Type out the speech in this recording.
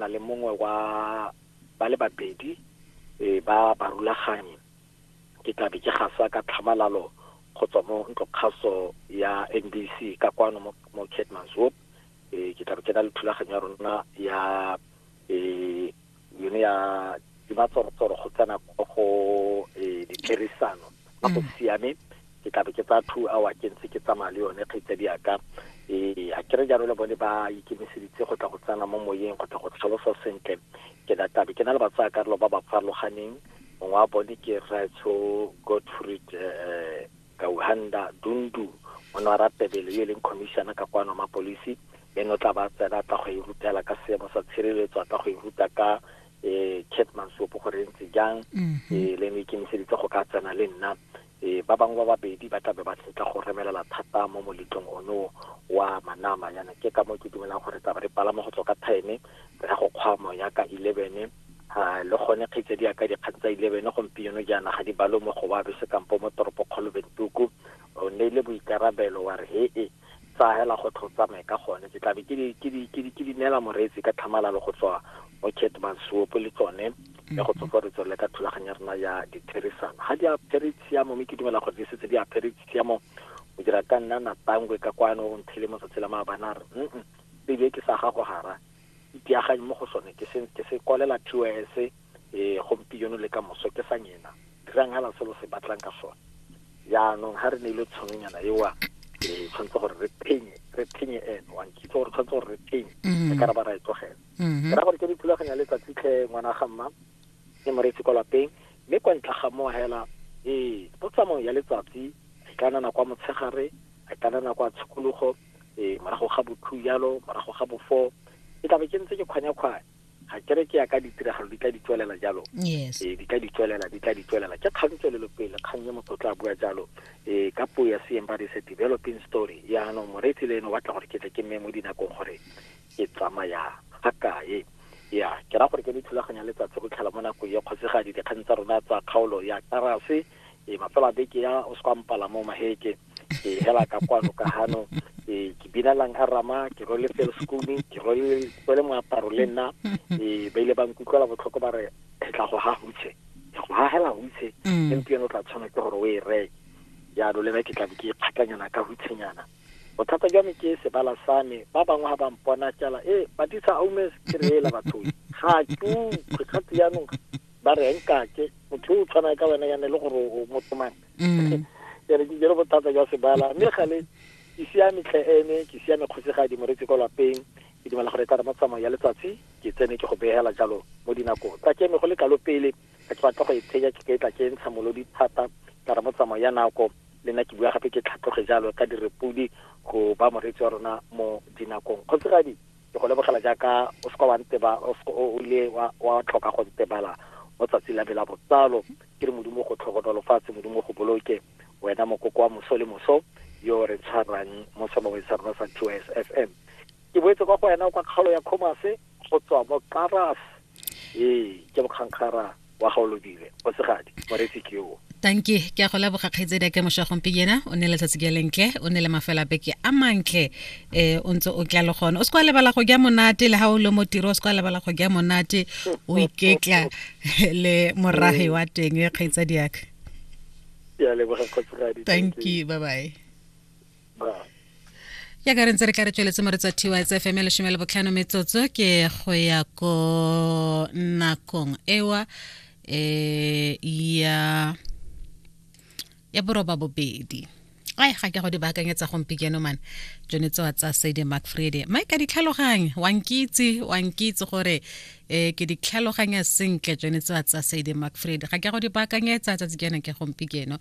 na le mongwe wa ba le babedi e ba barulaganyi ke tlabe ke gasa ka tlhamalalo go tswa mo ntlokgaso ya NBC ka kwano mo, mo Keetmanshoop e ke tlabe ke na le thulaganyo ya rona ya e yone ya dimatsorotoro go tsena go e dikerisano a go mm. siame ke tlabe ke tsaya two hour ke ntse ke tsamaya le yone kgaitsadi yaka ee a kere jalo le bone ba ikemiseditse go tla go tsena mo moyeng go tla go tlhalosa sentle ke na tlabe ke na le batsaya karolo ba ba farologaneng mongwe wa bone ke rraetsho godfried um eh, eh, kauhanda dundu o ne wa ratebele yo e leng commissioner ka kwano mapolisi ene o tla ba tsena a tla go e rutela ka seemo sa tshireletso a tla go e ruta ka eh Cat Mansopo gore e ntse jang eh le ne ikemiseditse go ka tsena le nna eh ba bangwe ba babedi ba tlabe ba setla go remelela thata mo moletlong ono wa manama yana ke ka mo ke dumelang gore taba re palama go tswa ka time re ya go kgwamo ya ka 11 Ah, le gone kgetse di ka dikgang tsa 11 gompieno jaana ga di balo mo go ba bese kampo mo toropo kgolo bentuku o ne le boikarabelo wa re he e tsa hela go tlho tsamaye ka gone ke tlabe ke di ke di ke di ke di nela moreetsi ka tlhamalalo go tswa mo Ketman Sopo le tsone ya go tsofa re tswelele ka thulaganyo ya rena ya ditherisano ga di apere tshiamo mme ke dumela gore di setse di apere tshiamo o dira ka nna na tangwe ka kwano o nthele mo tsatsi la maabana re mm tebe ke sa gago gara Ipeaganyi mo go sone, ke se, ke se kwalela TOS, e, gompieno le ka moso, ke sa nyena. Dirang hela se lo se batlang ka sone. Jaanong, ha re neilwe tshononyana eo, e, tshwanetse gore re phenye, re phenye ene. Wa nkitse gore tshwanetse gore re phenye, re mm-hmm. ka ra ba ra e tlogela. Mm-hmm. Ke ra gore ke dithulaganyo ya letsatsi tlhe ngwana ga mma, e moreetsi kwa lapeng, mme kwa ntle ga moo hela, e, mo tsamaong ya letsatsi, a ikanana kwa motshegare, a ikanana kwa tshikologo, e morago ga bothu jalo morago ga bofo ke tlabe ke ntse ke kgwanyakgwanya ga kere ke ya ka ditiragalo di tla di tswelela jalo ee di tla di tswelela di tla di tswelela ke kgang tswelelo pele kgang ye motho o tla bua jalo ee ka puo ya seeng ba re se developing story yaanong moreetsi le ene o batla gore ke tle ke mme mo dinakong gore ke tsamaya ga kae ya ke ra gore ke le thulaganya letsatsi go tlhela mo nakong ya kgosegadi dikgang tsa rona tsa kgaolo ya karase e mafelo a beke ya o se kwa mpala mo maheke e hela ka kwano ka hano e ke bina lang a rama ke role felo sekumi ke role kwele moaparo le nna e ba ile ba nkutlwela botlhoko ba re e tla go ha hutshe e go hahela hutshe mm. empa yone o tla tshwana ke gore o e reke jalo le nna ke tlabe ke ikgatlanyana ka hutshenyana bothata jwa me ke sebala sa me ba bangwe ga ba mpona tsala e eh, batisa aumes ke reela batho ga tu kgwekgati jaanong ba re nkake motho o tshwana ka wena yane le gore o motho mang mm. ke re ke jere bothata jwa sebala mme gale ke siame tlhe ene ke siame kgosegadi moretsi kwa lapeng ke dumela gore tara matsamao ya letsatsi ke tsene ke go begela jalo mo dinako tsa ke go le kalo pele ka ke batla go e tsheja ke ketla ke ntsha molodi thata tara motsamao ya nako le nna ke bua gape ke tlhatloge jalo ka direpodi go ba moretsi wa rona mo dinakong kgotsegadi Ke go lebogela jaaka o se ka wa nteba o se o ile wa wa tlhoka go ntebala mo tsatsi la me la botsalo ke re modimo go tlhokomelo fatshe modimo go boloke wena mokoko wa moso le moso yo re tshwarang mo sebaweng sa rona sa TYS FM ke boetse kwa go wena kwa kgaolo ya commerce go tswa mo Karas ee ke bokgankgara wa gaolodile go segadi moretsi ke o tanki ke a go leboga kgaitsedi a kemošo ya gompinyena o ne letsatsi ke lentle o ne le mafela beke a mantle um o ntse o tla le gone o se kwa lebala go ja monate le ga o le mo tiro o se kwa lebala go ja monate o iketla le moragi wa teng e kgaitsadi yaka thank you bye bye ya ka re ntse re ka re tsweletse mo re tswa tys fm lesome le botlhano metsotso ke go ya ko nakong ewa eh ya ya boroba bobedi ai ga ke go di baakanyetsa gompikeno mane tsone tsewa tsa sedi macfredi mae ka ditlhaloganye wankitse wankitse gore um ke ditlhaloganya sentle tsone tsewa tsa sedi macfredi ga ke go di baakanyetsa tsatsi kena ke gompikeno